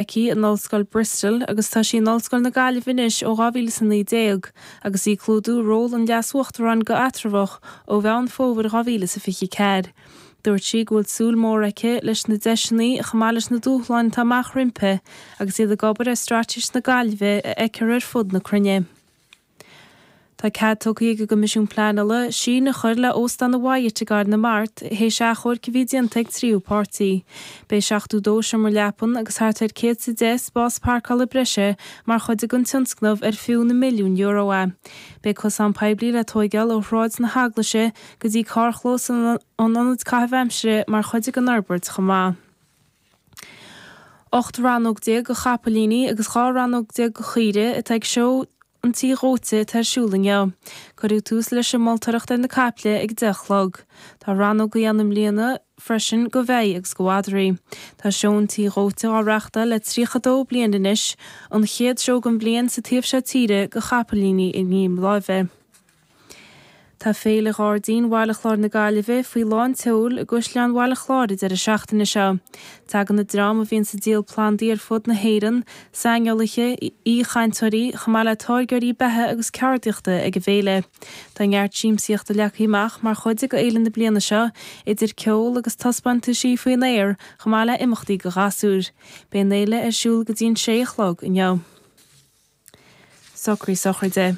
aici in Ollscoil Bristol agus tá sí in Ollscoil na Gaillimhe anois ó 2019 agus í ag clúdú ról an Leas-Uachtaráin go heatramhach ó Mheán Fómhair 2024. Dúirt sí go bhfuil súil mór aici leis na deiseanna chomh maith leis na dúshláin atá amach roimpi agus iad ag obair ar straitéis na Gaillimhe a fheicfear ar fud na cruinne. Tá cead tugtha ag an gCoimisiún Pleanála síneadh a chur le Óstán an Wyatt i gCathair na Mart théis achomhairc a bhí déanta ag tríú páirtí. Beidh 72 seomra leapan agus thart ar 100 is deich spás parcála breise mar chuid den tionscnamh ar fiú na milliúin euro é. Beidh cosán poiblí le tógáil ó Shráid na hEaglaise go dtí carrchlós an Ionaid Caithimh Aimsire mar chuid den fhorbairt chomh maith. 18 rannóg go chapaillíní agus 12 rannóg go caoire atá ag Seó an Tí Dhóite atá ar siúl inniu. Cuireadh tús leis an moltóireacht ar na caiple ag 10 a chlog. Tá rannógaí ann i mbliana freisin go bheithígh agus go mhadraí. Tá Seó an Tí Dhóite á reáchtáil le 32 bliain anois, an chéad seó den bhliain sa taobh seo tíre go chapaillíní i ngreim láimhe. Tá Féile Ghairdín Bhaile Chláir na Gaillimhe faoi lán tseoil i gCaisleán Bhaile Chláir an deireadh seachtaine seo. Tagann na dreamanna a bhíonn sa díol plandaí ar fud na hÉireann, saineolaithe, aoichainteoirí, chomh maith le táirgeoirí beatha agus ceardaíochta ag an bhféile. Tá neart siamsaíochta leagtha amach mar chuid de fhéile na bliana seo, idir ceol agus taispeántaisí faoin aer, chomh maith le imeachtaí do ghasúir. Beidh an fhéile ar siúl go dtí an 6 a chlog inniu. Socraigh sochraide.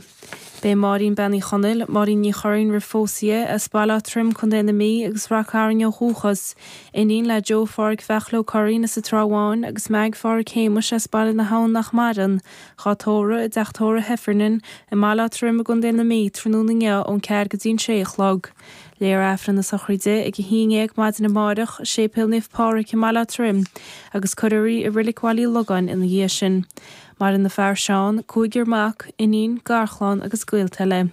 Beidh Máirín Bean Uí Chonaill, Máirín Ní Churraoin roimh phósadh di, as Baile Átha Troim, Co. na Mí, agus Rath Cairn ó dhúchas, iníon le Joe Pháraic Bheachla Ó Curraoin as an Trá Bháin agus Meaig Pháraic Shéamuis as Baile na hAbhann nach maireann, dhá tórramh i dTeach Tórra Heffernan i mBaile Átha Troim i gContae na Mí tráthnóna inniu ón ceathair go dtí an sé a chlog. Léifear Aifreann a sochraide ag a haon dhéag maidin amárach i Séipéal Naomh Páraic i mBaile Átha Troim agus cuirfear í i Reilig Bhaile Uí Logáin ina dhiaidh sin. Maireann a fear Seán, cúigear mac, iníon, garchlann agus gaolta eile.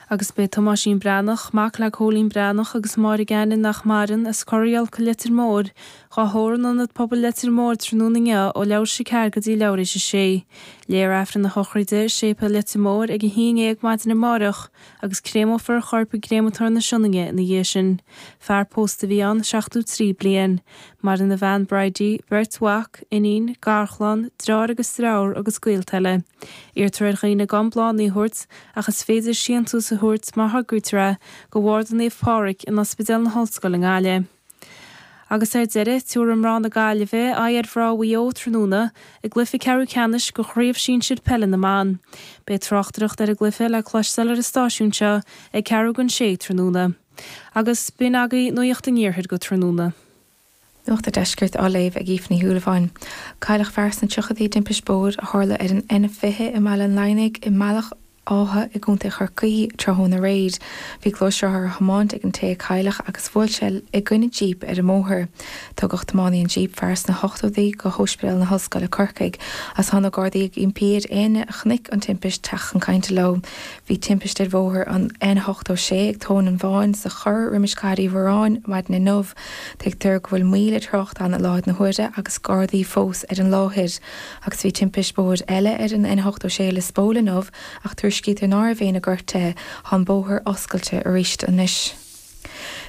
Agus beidh Tomáisín Breathnach, mac le Cóilín Breathnach agus Mary Gannon nach maireann, as Corrighiolc, Leitir Móir, dhá thórramh in Ionad Pobail Leitir Móir tráthnóna inniu ó leathuair théis a ceathair go dtí leathuair théis a sé. Léifear Aifreann a shochraide i Séipéal Leitir Móir ag a haon dhéag maidin amáireach. agus créamófar a chorp i gcréamatóir na Sionainne ina dhiaidh sin. Fear pósta a bhí ann, 73 bliain. Maireann a bhean Bridie, beirt mhac, iníon, garchlann, dreáir agus driofúr agus gaolta eile. Iarrtar ar dhaoine gan bláthanna a thabhairt ach is féidir síntiús a thabhairt má thograítear é go Bharda Naomh Pádraig in Ospidéal na hOllscoile i nGaillimh. Agus ar deireadh, tabharfaidh mná na Gaillimhe aghaidh ar mhná Mhaigh Eo tráthnóna i gcluiche ceathrú ceannais de Chraobh Sinsir Peile na mBan. Beidh tráchtaireacht ar an gcluiche le cloisteáil ar an stáisiún seo ag ceathrú don 6 tráthnóna. Agus b'in agaí Nuacht an Iarthair go tráthnóna. Nuacht an Deiscirt á léamh ag Aoife Ní Shúilleabháin. Cailleadh fear sna tríochaidí i dtimpist bóthair a tharla ar an N20 i mBaile an Laighnigh i mBealach Átha i gContae Chorcaí tráthnóna aréir. Bhí gluaisrothar á thiomáint ag an té a cailleadh agus bhuail sé i gcoinne jíp ar an mbóthar. Tugadh tiománaí an jíp, fear sna hochtóidí, go hOspidéal na hOllscoile, Corcaigh, is tá na Gardaí ag impí ar éinne a chonaic an timpist teacht chun cainte leo. Bhí timpist ar bhóthar an N86 ag Tóin an Bháin sa chor roimis Cathair Uí Mhóráin maidin inniu. Tuigtear go bhfuil moill ar thrácht ann i láthair na huaire agus Gardaí fós ar an láthair. Agus bhí timpist bóthair eile ar an N86 i Lios Póil inniu ach tuairiscítear ná raibh éinne gortaithe, tá an bóthar oscailte arís anois.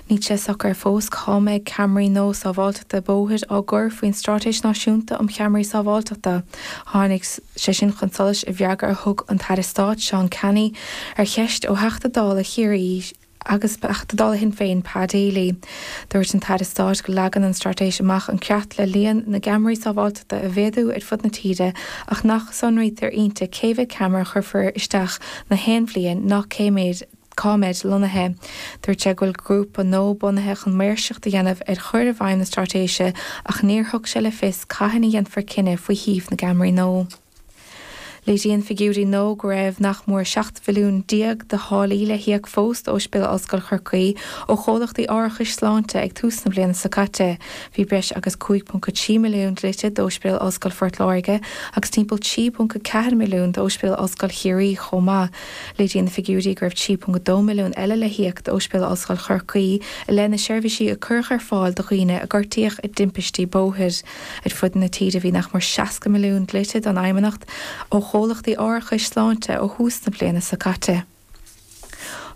Níl sé socair fós cá mbeidh ceamaraí nua sábháilteachta bóthair á gcur faoin Stráitéis Náisiúnta um Cheamaraí Sábháilteachta. Tháinig sé sin chun solais i bhfreagra a thug an tAire Stáit Seán Canney ar cheist ó Theachta Dála Chiarraí, Agus ó Theachta Dála Shinn Féin Pa Daly. Dúirt an tAire Stáit go leagann an Straitéis amach an creat le líon na gceamaraí sábháilteachta a mhéadú ar fud na tíre ach nach sonraítear inti cé mhéad ceamara a chuirfear isteach nach aon bhliain ná cá mbeid lonnaithe. Dúirt sé go bhfuil grúpa nua bunaithe chun maoirseacht a dhéanamh ar chur i bhfeidhm na Straitéise ach níor thug sé le fios cathain a dhéanfar cinneadh faoi shuíomh na gceamaraí nua. Léiríonn figiúirí nua go raibh nach mór 17 mhilliún de tháillí le híoc fós d'Ospidéal Ollscoil Chorcaí ó chomhlachtaí árachais sláinte ag tús na bliana seo caite. Bhí breis agus 5.3 milliún dlite d'Ospidéal Ollscoil Phort Láirge agus timpeall 3.4 milliún d'Ospidéal Ollscoil Chiarraí chomh maith. Léiríonn figiúirí go raibh 3.2 milliún eile le híoc d'Ospidéal Ollscoil Chorcaí i leith na seirbhísí a cuireadh ar fáil do dhaoine a gortaíodh i dtimpistí bóthair. Ar fud na tíre bhí nach mór 60 milliún dlite don Fheidhmeannacht ó chomhlachtaí árachais sláinte ó thús na bliana seo caite.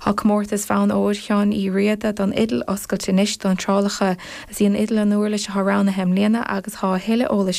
Tá comórtas Bhonn Óir Sheáin Uí Riada don Fhidil oscailte anois d'iontrálacha. Is í an fhidil an uirlis atá roghnaithe i mbliana agus tá a thuilleadh eolais